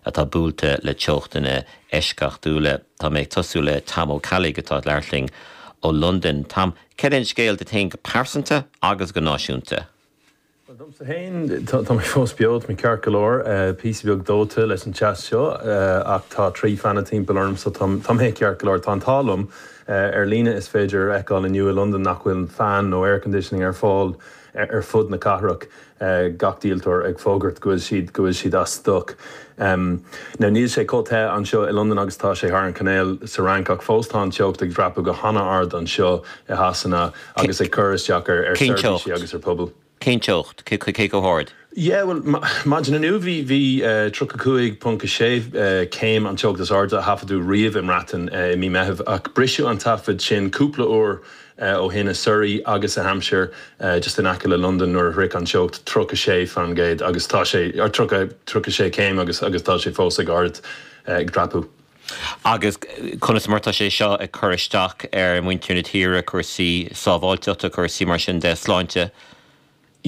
atá buailte le teochtanna eisceachtúla. Tá mé ag tosú le Tom Ó Ceallaigh atá ag labhairt linn ó Londain. Tom, céard é an scéal duit féin go pearsanta agus go náisiúnta? Bhuel, domsa féin, tá mé fós beo, tá mé ceart go leor, píosa beag dóite leis an teas seo ach tá trí fean timpeall orm so tá mé ceart go leor. Tá an t-ádh liom, ar líne is féidir a fheiceáil inniu i Londain nach bhfuil fean nó air conditioning ar fáil, ar fud na cathrach, gach díoltóir ag fógairt go bhfuil siad go bhfuil siad as stoc. Now níl sé chomh te anseo i Londain agus atá sé thar an cainéal sa Fhrainc ach fós tá an teocht ag dreapadh go hana-ard anseo i Sasana agus ag cur isteach ar seirbhísí agus ar phobail. Cén teocht? Cé chomh hard? Yeah, bhuel, maidin inniu bhí 35.6 céim an teocht is airde a taifeadadh riamh i mBreatain i mí Meitheamh, ach briseadh an taifead sin cúpla uair ó shin i Surrey agus i Hampshire, just in aice le Londain, nuair a shroich an teocht 36 faoin gcéad agus tá sé, or 30, 36 céim agus agus tá sé fós ag ard, ag dreapadh. Agus conas mar atá sé seo ag cur isteach ar mhuintir na tíre, cúrsaí sábháilteachta, cúrsaí mar sin de, sláinte?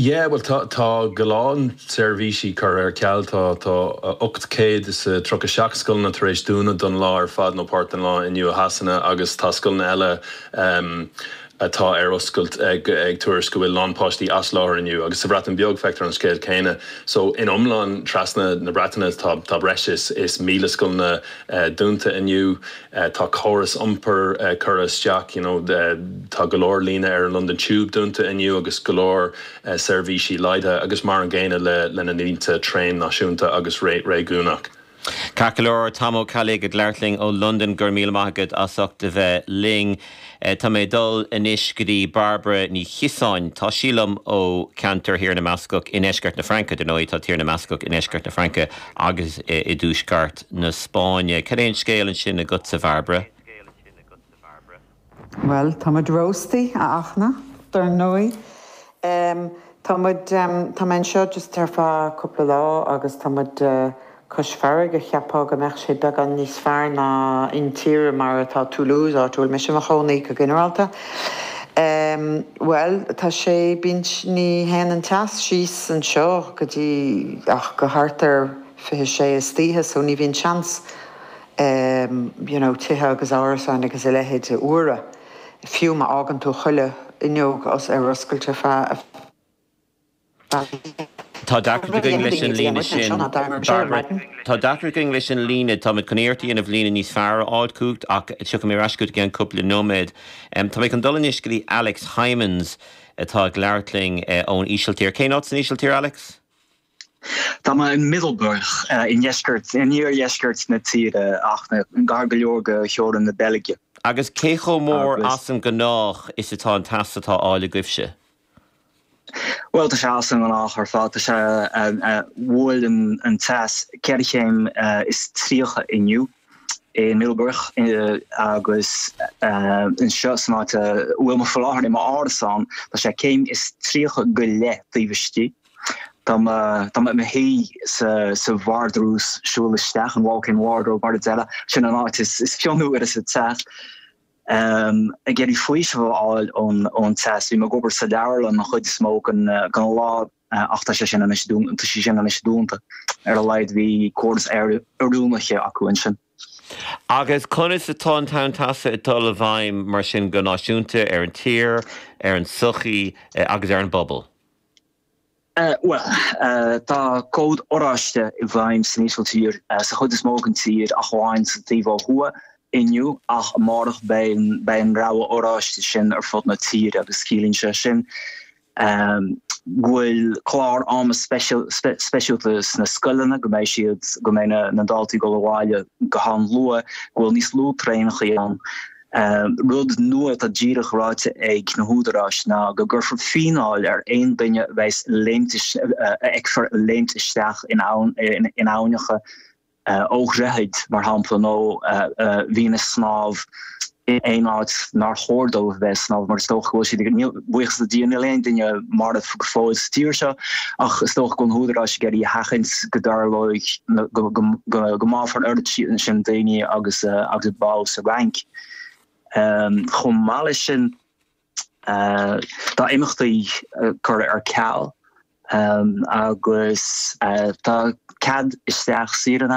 Yeah, bhuel tá, tá a lán seirbhísí curtha ar ceal, tá, tá ocht céad is a tríocha seacht scoileanna tar éis dúnadh don lá ar fad nó páirt den lá inniu i Sasana agus tá scoileanna eile ehm atá ar oscailt ag, ag tuairisc go bhfuil a lán páistí as láthair inniu agus sa Bhreatain Bheag feictear an scéal céanna so in iomlán trasna na Breataine tá, tá breis is, is míle scoileanna eh dúnta inniu. Tá córas iompair curtha isteach you know tá go leor líne ar an London Tube dúnta inniu agus go leor seirbhísí laghdaithe agus mar an gcéanna le le na línte traen náisiúnta agus réigiúnach. Ceart go leor, Tom Ó Ceallaigh ag labhairt linn ó Londain, go raibh míle maith agat as ucht a bheith linn. Tá mé ag dul anois go dtí Barbara Ní Chiosáin, tá sí liom ó cheantar Thír na mBascach i ndeisceart na Fraince, dar ndóigh, tá Tír na mBascach i ndeisceart na Fraince agus i dtuaisceart na Spáinne. Cad é an scéal ansin agatsa, Bharbara? Bhuel, tá muid róstaithe, a Fhachtna, dar ndóigh. Em, tá muid, em, tá mé anseo just ar feadh cúpla lá agus tá muid, eh, cois farraige, cheapfá go mbeadh sé beagán níos fearr ná intíre mar atá Toulouse, áit a bhfuil mise i mo chónaí, go ginearálta. Em, bhuel, tá sé, bíonn, ní théann an teas síos anseo go dtí ach go thart ar fiche sé istoíche so ní bhíonn seans, em, you know, tithe agus árasáin agus a leithéid a fhuaradh. fiú má fhágann tú chuile fhuinneog os ar oscailt ar feadh a Tá deacracht againn leis an líne sin, Bairbre. Tá deacracht againn leis an líne. Táimid chun iarrachtaí a dhéanamh líne níos fearr a fháil chugat ach tiocfaidh mé ar ais chugat i gceann cúpla nóiméad. Táimid chun dul anois go dtí Alex Hijmans atá ag labhairt linn ón Ísiltír. Cén áit san Ísiltír, Alex? Tá mé in Middelburg, i ndeisceart, in iardheisceart na tíre, ach gar go leor go theorainn na Beilge. Agus cé chomh mór as an ngnách is atá an teas atá á fháil agaibhse? Bhuel, tá sé as an ngnách ar fad. Tá sé, bhuail an teas ceithre chéim is tríocha inniu i Middelburg, agus anseo san áit a bhfuil mé faoi láthair, i m'árasán, tá sé céim is tríocha go leith taobh istigh. Tá mé i mo shuí sa vardrús, siúl isteach an walk-in wardrobe mar a deir, sin an áit is fionnuaire sa teach, ag iarraidh faoiseamh a fháil ón teas. Bím ag obair sa leabharlann an chuid is mó den lá ach tá sé sin anois dúnta, tá sí sin anois dúnta. Ar a laghad bhí córas aeroiriúnaithe acu ansin. Agus conas atá an tonn teasa ag dul i bhfeidhm mar sin go náisiúnta ar an tír, ar an tsochaí agus ar an bpobal? Bhuel, tá cód oráiste i bhfeidhm san Ísiltír, sa chuid is mó den tír, ach amháin sa taobh ó thuaidh, inniu, ach amárach beidh an rogha oráiste sin ar fud na tíre agus ciallaíonn sé sin go bhfuil clár ama speisialta sna scoileanna, go mbeidh siad, go mbeidh na daltaí ag dul abhaile go han-luath, go bhfuil níos lú traenacha ann. An rud nua atá díreach ráite ag na húdaráis ná go gcuirfear fíneáil ar aon duine a bheas ag léimt, a fheicfear ag léimt isteach in aibhneacha ó dhroichid, mar shampla, nó a bhíonn ag snámh in aon áit nár chóir dóibh a bheith ag snámh mar is dócha go bhfuil siad ag. buíochas le Dia níl aon duine marbh go fóill sa tír seo ach is dócha go na húdaráis ag iarraidh a sheachaint go dtarlóidh go mbáfar oiread sin daoine agus agus a bádh sa Fhrainc. Chomh maith leis sin tá imeachtaí curtha ar ceal agus tá cead isteach saor in aisce.